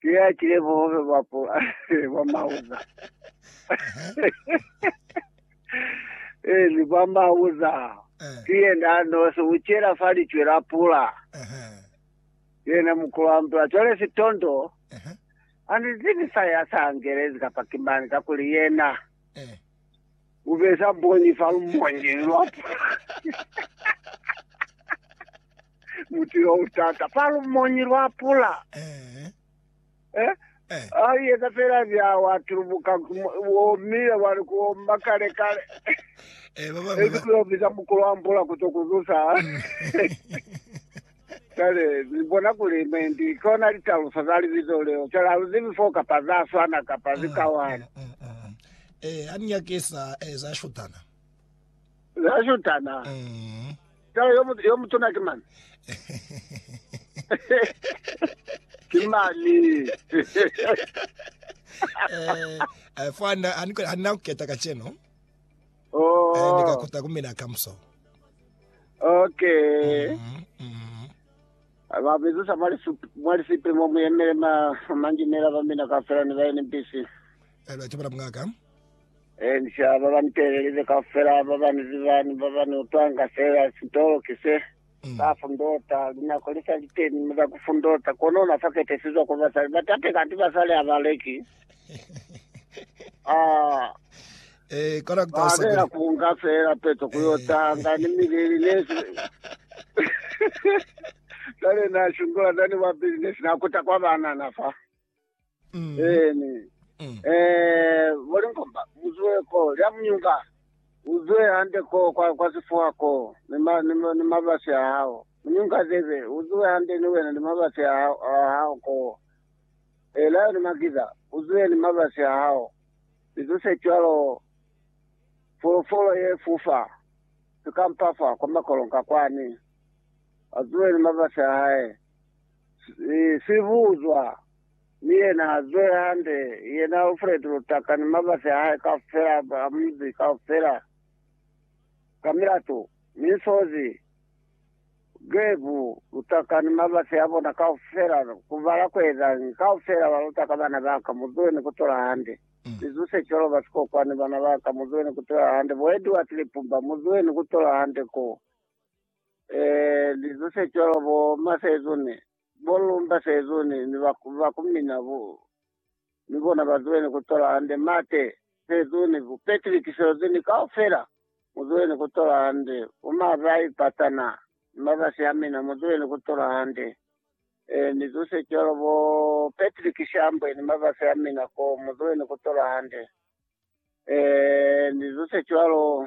Ke ya kile bohobe bwa pula bwa mauza. Eh, ni bwa mauza. Eh. Ke yena nose u chela fa licwe la pula. Yena mukulu wa mpula. Chole sitondo. Ani zibi sa ya sa angelezi kapa kimani ka kuli yena. Eh. U besa mbonyi fa lumonyi lwa pula. Muti yo u tata fa lumonyi lwa pula. Eh. Eh? Eh. A yeta fela bya wa tulubuka wo mile wa li ku omba kale kale. Eh, baba mwe. Ezi kuyo biza mukulu wa mpula ku to kuzusa. Kale, ni bona kuli me ndi kona litalusa za libizo leo. Kale, ha lu zibi fo kapa za swana kapa zikawana. Mm, mm, mm. Eh, ha ni nyakisa eh, za shutana. Za shutana. Mm. Tala yo mut- yo mutuna ke mani. Ke mani. Eh, eh, fo hana hana- hana kuketa kacheno. Eh, Oh. ndikakuta kumina kamso. Okay. Mm, mm. Vabezusa mwali sup- mwali sipe mo muyemele ma manjinela bamina kafela ni baye ni mpisi. Eh, lwa chimana mungaka. Encia ba ba niteelelize kaufela, ba ba ni ziba ni ba ba ni utwanga feela sitolo ki se. Ba fundota, linako li sa li teni mi za ku fundota, kono na sa ketesizwa kwa basali ba tate kanti basali ha ba leki. Ah, Eh, kono ku ba talusa kuli. lela ku nga feela peto ku yo tanga ni mileli ne si. Kale na shungula zani wa business na kuta kwa banana fa. Mm. Eeni. Mm. Eh, bolinkomba, muzwe ko, lya munyunga. Uzwe hande ko, kwa, kwa sifuha ko, ni ma, ni, ma- ni mabasi a hao. Munyunga zebe, uzwe hande ni wena ni mabasi a hao, a hao ko. Eh, layo ni makiza, uzwe ni mabasi a hao. Lizo se cwalo, folofolo ye fufa, sikampafa kwa makolonka kwani. Azwe ni mabasi a hae. Sibuzwa, mi yena a zwe hande, yena Fred Lutaka ni mabasi a hae kaufela, ba munzi kaufela, ka milato, mi nsozi, Gabe Lutaka ni mabasi a bona kaufela, ku bala ku ezañi, kaufela ba Lutaka, bana ba ka, mu zwe ni ku tola hande, ni zuse cwalo, ba Sikokwani, bana ba ka, mu zwe ni ku tola hande, bo Edward Lipumba, mu zwe ni ku tola hande ko. eh, lizo se cwalo bo ma sezone, bo lumba sezone, ni ba, ba kumina bo, ni bona ba zwene ku tola hande mate sezone, bo Patrick sezone kaufela, mu zwene ku tola hande, bo ma ba ipatana, ni ma ba siamina, mu zwene ku tola hande. Eh, ni zo se cwalo bo Patrick Shambwe, ni ma ba siamina ko, mu zwene ku tola hande. Eh, ni zo se cwalo.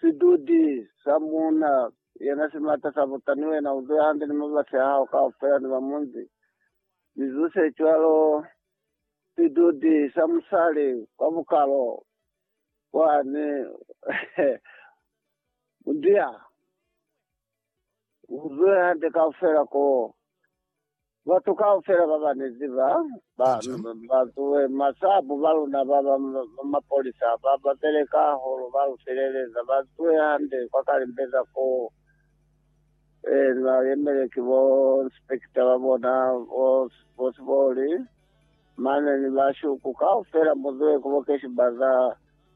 Sidudi sa muuna yena si mata sa buta, ni wena u zwe hande ni mabasi a hao kaufela ni ba munzi. Mi zu se cwalo, sidudi sa musali kwa bukalo bwani, Mudiya. Uzwe hande kaufela ko. Batu kaufela ba ba ne ziba ba ba zuwe masabu ba luna ba ba mapolisa ba ba beleka holo ba lu feleleza ba zuwe hande kwa kalimbeza ko. Eh na yemele ki bo inspector ba bona bo bo siboli mane ni ba shuku kaufela muzuwe ko bo keshi baza.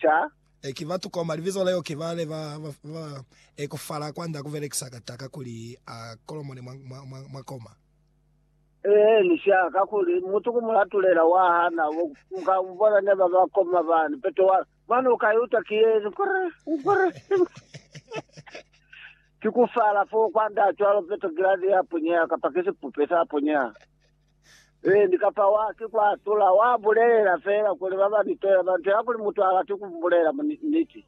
ca. E ki batu koma libizo leo ki bale ba ba ekofala kwanda ku belekisa kataka kuli a kolomone mwa mwa mwa koma. Eeni, sha, kakuli mutu ku mulatulela wa hana bo, muka bona ne ba ba koma bani, peto wa, mane u ka iuta ki yeni, Ngwere, ngwere, ki ku fala foo kwanda cwalo, peto giladi ya punyeha, kapa ki sipupe sa punyeha. Ee, ni ka fao haki kwa atula. Wa bulelela feela kuli ba ba nitoya ba nto ya kuli mutu ha lati ku bulela niti.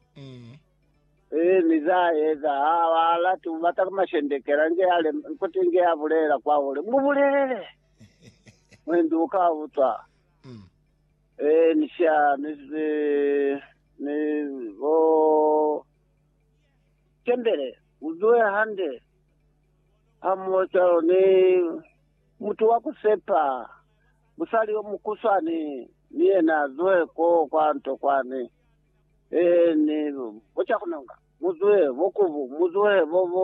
Ee, mi za eza, ha a lati ku bata ku mashendekela, inge a le, kuti inge a bulelela kwa hule, Mu bulelele! Mwendi u ka utwa. Ee, ni sha, ni, ni, ni, bo, tembele, u zuhe hande, ha muho cwalo, ni, Mutu wa ku sepa, musali yo mukuswani ni yena a zuhe ko kwa nto kwani. Ee, ni bo ca ku nonga, mu zuhe, bo kubu, mu zuhe, bo, bo,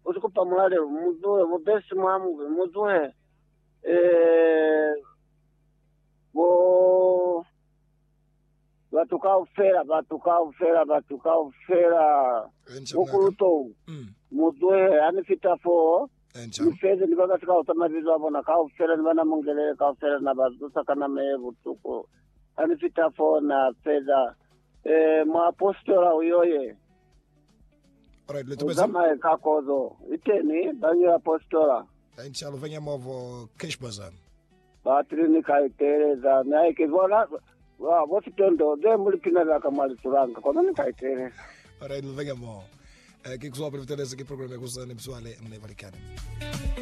bo si kupa mulalelo, mu zuhe, bo besi mwa mubi, mu zuhe, ee, bo. Batu kaufela, batu kaufela, batu kaufela, mukulu Tou, muzuhe. Hani fita foo, Ni fezi, ni baka sikausa mabizo a bona kaufela, ni bana mungelele kaufela, Na ba zusa ka nama ye butuku. Hani fita foo, Na feza. Ee, muapositola uyo ye. Uzamaye ka kozo. Iteni, bañi apositola. Enca luvanya movo, Cashbazan. Batile ni ka iteeleza, mi haike ki bona ba bo sitondo be mu lipina za ka mwa litulanga, kono ni ka iteeleza. Alright, ni venge mo. Eh, Kikuzwa Profitelezi ki program ya ku za ni mizwale ni balikani.